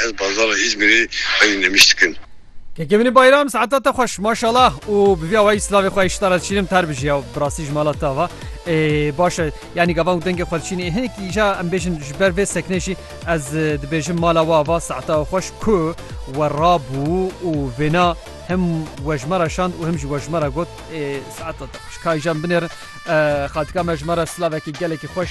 Ez bazara Îzmîrê xwedî nemîş dikim. Kekevînî Bayram saeta te xweş maşallah û bi vî awayî silavê xwe îştara diçînim ter bijî ya bi rastî ji mala te ava ê baş e yanî gavan ku dengê xwe diçînî ê hinekî îja em bêjin ji ber vê seknê jî ez dibêjim mala we ava saeta we xweş ku we rabû û vêna him we ji me re şand û him jî we ji me re got ê saeta te xweş ka îja em binêrin xatika me ji me re silavekî gelekî xweş.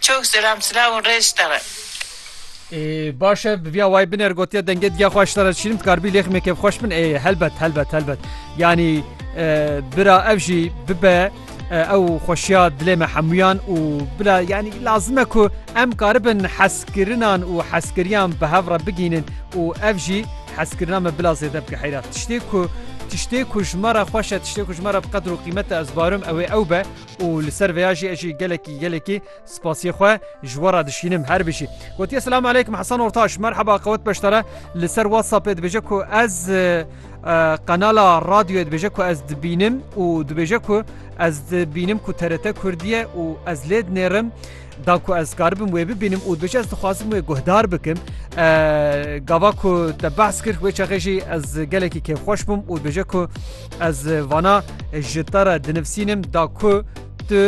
Çok selam sılav û rêz ji te re. Ê baş e bi vîya wayî biner gotiye dengê diya xwe ji te re dişînim dikaribî lêxî me kêfxweş bin ê helbet helbet helbet yanî bira ev jî bibe ew xweşiya dilê me hemûyan û bila yanî lazim e ku em karibin heskirinan û heskiriyan bi hev re bigînin û ev jî heskirina me bila zêde bike heyra tiştê ku tiştê ku ji me re xweş e tiştê ku ji me re bi qedir û qîmete ez barim ew ê ew be û li ser vêya jî ez jî gelekî gelekî spasiyê xwe ji we re dişînim. Her bijî. Gotiye Selam Aleyküm Hesen Ortaş Merhaba qewet beşdare li ser WhatsAppê dibêje ku ez qenala radyoyê dibêje ku ez dibînim û dibêje ku ez dibînim ku TRT Kurdiye û ez lê dinêrim Da ku ez dikaribim wê bibînim û dibêje ez dixwazim wê guhdar bikim gava ku te behs kir wê çaxê jî ez gelekî kêfxweş bûm û dibêje ku ez vana ji te re dinivsînim da ku tu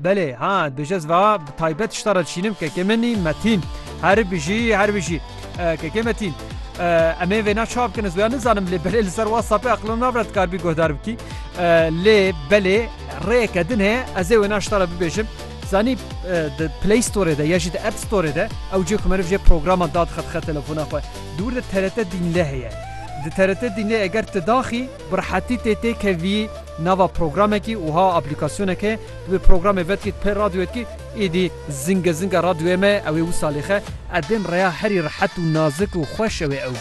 belê ha dibêje ez va bi taybet ji te re dişînim kekê min î metîn her bijî her bijî kekê metîn em ê vêna çawa bikin ez wêya nizanim lê belê li ser WhatsAppê eqlina navre dikaribî guhdar bikî lê belê Rêyeke din heye ez ê wêna ji te re bibêjim. Zanî di Play Storê de ya jî di App Storê de ew cê ku meriv jê programan dadixe dixe telefona xwe. Di wir de TRT Dînle heye. Di TRT Dînlê eger tu daxî bi rehetî tê têkevî nava programekî wiha aplîkasyonek heye tu wê programê vedikî di pê radyoyê dikî êdî zinge zinge radyoyê me ew ê wisa lêxe edên reya herî rehet û nazik û xweş ew ê ew